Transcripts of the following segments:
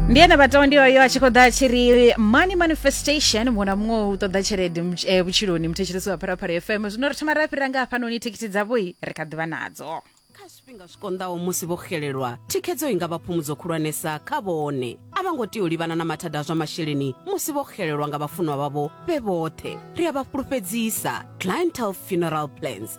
ndiye na vhaṱawa ndi oyo a tshi khou ḓa a tshi ri money manifestation muṅwe na muṅwe u ṱoḓa tshelede mutsh- eh, vhutshiloni muthetshelesi wa pharapharya fm zwino ri thoma ra fhira nga hafhanoni thekhisi dzavhoi ri kha ḓivha nadzo kha zwifhinga zwi konḓaho musi vho xelelwa thikhedzo i nga vha phumudzo khulwanesa kha vhone a vha ngo tea u livhana na mathada a zwa masheleni musi vho xelelwa nga vhafunwa vhavho vhe vhoṱhe ri a vha fhulufhedzisa clientel funeral plans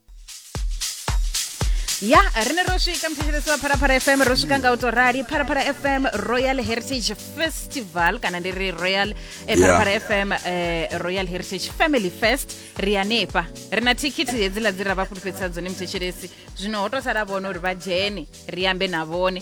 ya ri ne ro swika mthetshelesi wa pharapara fm ro swika nga u to rali pharapara fm royal heritage festival kana ndi ri royal eh, pharapara fm eh, royal heritage family fest ri hanefha ri na thikhithi hedziḽa dzi ra vha fhulufhedzisa dzone mthetshelesi zwino ho to sala vhone uri vha dzhene ri ambe na vhone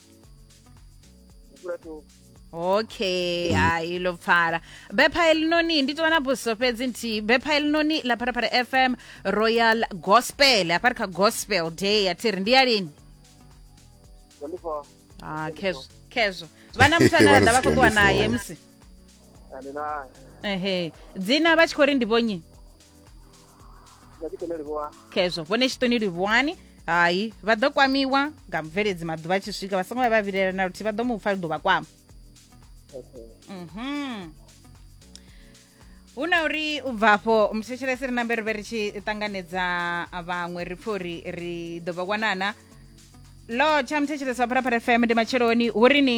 okay hayi lo pfala bepha elinoni ndi to vha na buso fhedzi nthihi bepha elinoni ḽa pharapara fm royal gospel hafha ri kha gospel day ya thiri ndi ya lini ah khezwo khezwo vha na muthu ane vha ḓa vha khou ṱuwa naye musi ehe dzina vha tshi khou ri ndi vhonyi khezwo vhone tshiṱoni livhuwani hai vha ḓo kwamiwa nga mubveledzi maḓuvha a tshi swika vha songo vha vha vilela na luthihi vha ḓo mu pfa ḓo vha kwama mhm hu na uri u bva afho muthetshelesi ri nambe ri vhe ri tshi ṱanganedza vhaṅwe ri pfhe uri ri ḓo vha wanana lo tsha muthetshelesi wa pharapara fm ndi matsheloni hu ri ni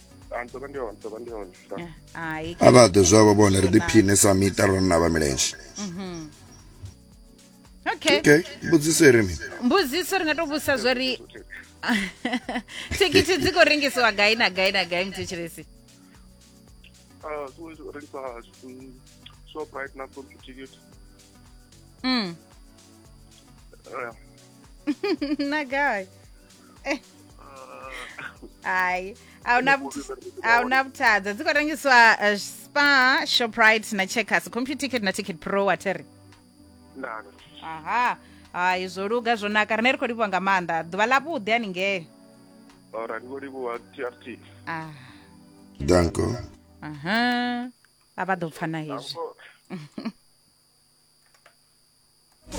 hai a vha ḓe zwavho vhone ri ḓiphine sa miṱa ro na vha milenzhe mhm. okay okay mbudziso iri mi mbudziso ri nga to vhusa zwo ri thikhithi dzi khou rengisiwa gai na gai na gai muthetshiresi ah, shoprite na sonthu thikhithi mm. na gai Eh. hayi awuna awuna vhuthadza dzi khou rengiswa eh, spa shoprite na checkers computer ticket na ticket pro watheri ndani aha hayi zwo luga zwo naka rine ri khou livhuwa nga maanḓa ḓuvha ḽavhuḓi haningei ora ndi khou livhuwa trt ah Danko. aha a vha ḓo pfana hezwi Danko.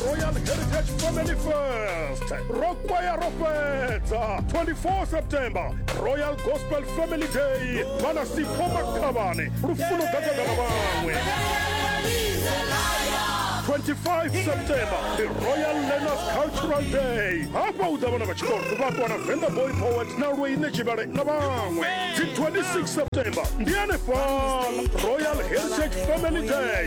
royal heritage family fest rokwaya ro fhedza 24 september royal gospel family day vhana sipho makhavhane lufuno ḓadzana na vhaṅwe 25 september the royal learners cultural day hafha u ḓa vhana vha tshikolo vhakwana venda boy poet na lweine tshivhale na vhaṅwe dzi 26 september ndi hanefhala royal heritage family day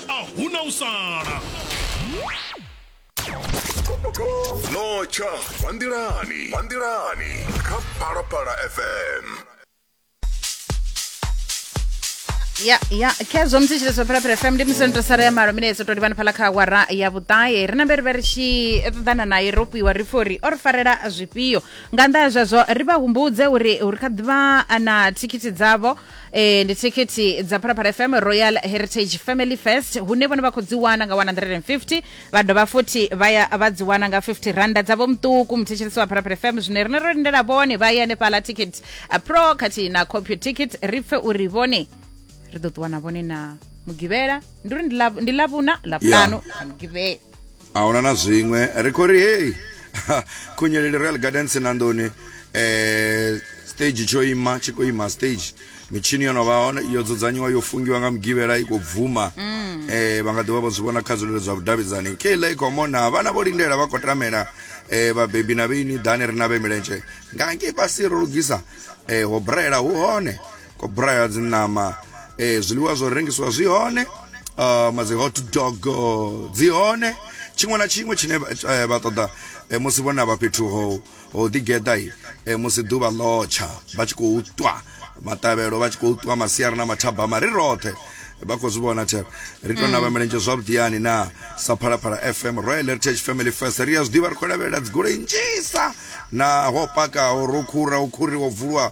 a huna u sala no tsha vanḓilani vanḓilani kha phalaphala fm ya ya khezwo musi tshite zwa phalaphala fm ndi musi ndo sara ya malo mine dzo to livhana phala kha awara ya vhuṱahe ri na mbere vha ri tshi ṱoḓana naye ro pwiwa ri fori o ri farela zwifhio nga nnḓa ha zwezwo ri vha humbudze uri uri kha ḓivha na thikhithi dzavho e, ndi thikhithi dza phalaphala fm royal heritage family fest hune vhone vha khou dzi wana nga 150 vha dovha futhi vha ya vha dzi wana nga 50 randa dzavho muṱuku muthetshelesi wa phalaphala fm zwine rine ro lindela vhone vha ye hanefhala ticket uh, pro khathihi na copy ticket ri pfe uri vhone ri ḓo ṱuwa na vhone na mugivhela ndi uri ndi Ḽav- ndi ḽavhuna ḽavhutanu na mugivhela a huna na zwiṅwe ri khou ri hei khunyeleli royal gardens na nḓuni eh stage tsho ima tshi khou ima stage mitshini yo no vha hone yo dzudzanyiwa yo fungiwa nga mugivhela i khou bvuma mm. eh vha nga ḓivha vho zwi vhona kha zwilelo zwa vhudavhidzani keiḽa i khou mona vhana vho lindela vha khou tamela eh vhabebi na vheini ḓani ri na vhe milenzhe nga ngei fhasi ro lugisa eh ho braela hu hone ko braya dzi ṋama eh zwiḽiwa zwo rengisiwa zwi hone uh, ma dzi hot dog dzi hone tshiṅwe na tshiṅwe tshine eh, vha ṱoḓa eh, musi vhona vha fhethu ho ho ḓigeḓa eh, musi ḓuvha ḽotsha vha tshi khou ṱwa maṱavhelo vha tshi khou ṱwa masiari na mathabama ri roṱhe vha khou zwi vhona tshe ri tou navha mm. milenzhe zwavhuḓiyani na sa phalaphala fm royal heritage family first ri a zwi ḓivha ri khou lavhelela dzigoloi nnzhisa na ho pakaho ro khura u khuriwa bvulwa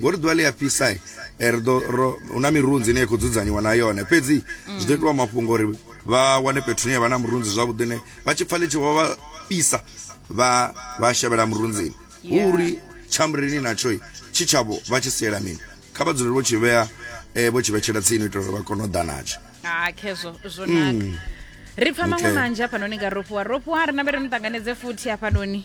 ngori ḓuvha ḽi a fhisa eh, ri ḓo hu na mirunzi ine ya khou dzudzanyiwa na yone fhedzi zwi ḓo itiwa mafhungo uri vha wane fhethu ne vha na murunzi zwavhuḓi ne vha tshi pfa ḽi tshi vha vha fhisa vha vha shavhela murunzini hu uri tshamureni natsho tshi tshavho vha tshi siela mini kha vha dzulele vho tshi vhea eh, vho tshi vhetshela tsini u itela uri vha kone u ḓa natsho ha khezwo zwo naka ri pfa maṅwe Okay. manzhi hafhanoni nga ropuwa ropuwa ri nambe ri ni ṱanganedze futhi hafhanoni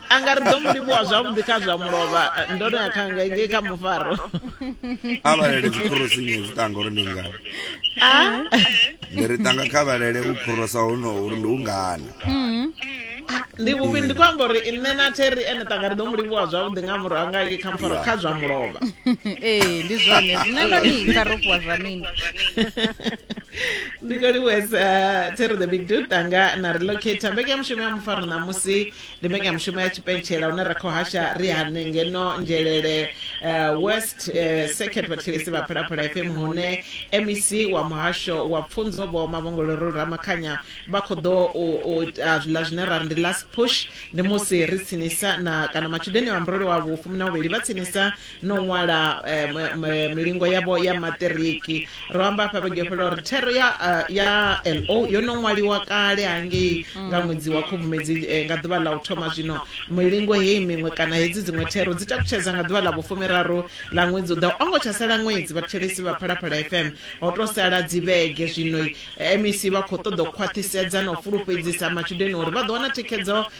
anga ri ḓo mu livhuwa zwavhuḓi kha zwa mulovha ndo no ya kha nga ngei kha mufaro a vhalele dzikhorosinyi zwi tanga uri ndi ngani Ah, ndi ri tanga kha vhalele u khorosa honoho uri ndi u ngani ndi vhuvhi ndi khou amba uri nṋe na theri ene tanga ri ḓo mu livhuwa zwavhuḓi nga murahu nga ngei kha mufaro kha zwa mulovha ee ndi zwone zwine ndo ni nga rofhiwa zwa mini ndi khou livhuwesa theri the big dude tanga na relocate mbeke ya mushumo ya mufaro ṋamusi ndi mbekanyamushumo ya tshipentshela hune ra khou hasha ri hane ngeno nzhelele uh, west uh, second vhathelesi vha phalaphala fm hune mec wa muhasho wa pfunzo vho mavhongolero ramakhanya vha khou ḓo u u ita zwiḽa zwine ra ri ndi last push ndi musi ri tsinisa na kana matshudeni a murole wavho fumi na vhuvhili vha tsinisa no ṅwala eh, m- m- milingo yavho ya maṱiriki ro amba hafha vhege yo fhela uri thero ya eh, ya lo yo no ṅwaliwa kale hangei nga ṅwedzi wa khubvumedzi eh, nga ḓuvha ḽa u thoma zwino milingo heyi miṅwe kana hedzi dziṅwe thero dzi takutshedza nga ḓuvha ḽa vhufumiraru ḽa ṅwedzi u ḓaho o ngo tsha sala ṅwedzi vhathetshelesi vha phalaphala fm ho to sala dzivhege zwino mec vha khou ṱoḓa u khwaṱhisedza na u fulufhedzisa matshudeni uri vha ḓo wana thikhedzo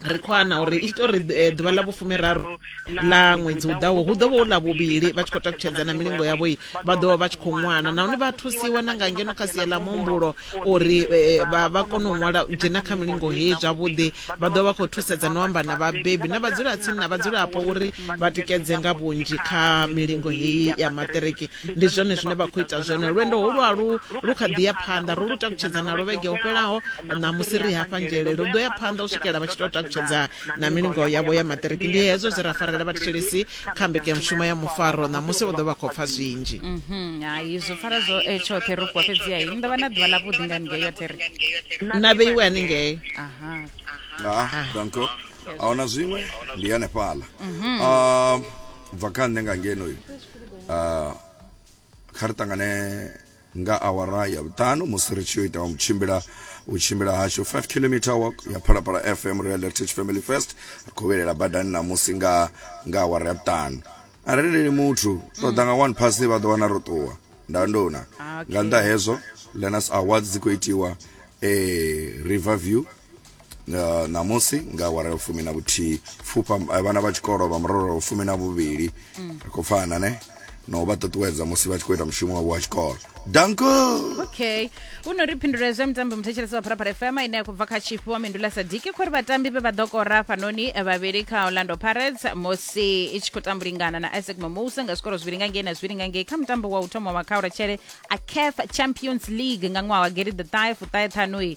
ri khou ana uri i tori eh, ḓuvha ḽa vhufumiraru ḽa ṅwedzi u ḓaho hu ḓo vha u ḽa vhuvhili vha tshi khou takutshedza na milingo yavho i vha ḓo vha vha tshi khou ṅwala nahone vha thusiwa na nga ngeno kha sia ḽa muhumbulo uri eh, vha vha kone u ṅwala u dzhena kha milingo heyi zwavhuḓi vha ḓo vha khou thusedza no amba na vhabebi na vhadzulatsini na vhadzulapo uri vha tikedze nga vhunzhi kha milingo heyi ya maṱiriki ndi zwone zwine vha khou ita zwone lwendo ho lwalu lu kha ḓi ya phanḓa ro lu takutshedza nalo vhege ho fhelaho ṋamusi ri hafha nzhele lu ḓo ya phanḓa u swikela vha tshi tou takutshedza na milingo yavho ya maṱiriki ndi hezwo zwe ra farela vhathetshelesi kha mbekanyamushumo ya mufaro ṋamusi u ḓo vha khou pfa zwinzhi mhm, hai zwo fara zwo eh, tshoṱhe ro fhiwa fhedziha i ndo vha na ḓuvha ḽavhuḓi nga ningei yoṱhe ri na vheiwe haningei aha ah, danko a huna zwiṅwe ndi hanefhaḽa mhm. ah, bva kha nṋe nga ngenoyo uh, kha ri ṱangane nga awara ya vhuṱanu musi ri tshi yo ita wa mutshimbila u tshimbila hashu 5 km walk ya phalaphala fm real heritage family first ri khou vhelela badani namusi nga nga awara ya vhuṱanu a ri lileli muthu ṱoḓa nga one pass vha ḓo wana ro ṱuwa nda ndona ah, nga nnḓa hezwo lenas awards dzi khou itiwa eh, river view Uh, ṋamusi nga awara ya fumi na vhuthihi pfufha eh, vhana vha tshikolo vha murolo fumi na vhuvhili mm. ri khou pfana ne na u vha ṱuṱuwedza musi vha tshi khou ita mushumo wavho wa tshikolo danko okay u no ri phindulo zwa mitambo muthetshelesi wa pharapara fm ine ya khou bva kha tshifhi wa mindula sadiki khori vhatambi vhe vha ḓo kora fhanoni eh, vhavhili kha orlando pirates musi i tshi khou tambulingana na isaac mamosa nga zwikoro zwivhili nga ngei na zwivhili nga ngei kha mutambo wa u thoma wa khaura tshele a caf champions league nga ṅwaha wa geri the thai fuṱahe ṱhanui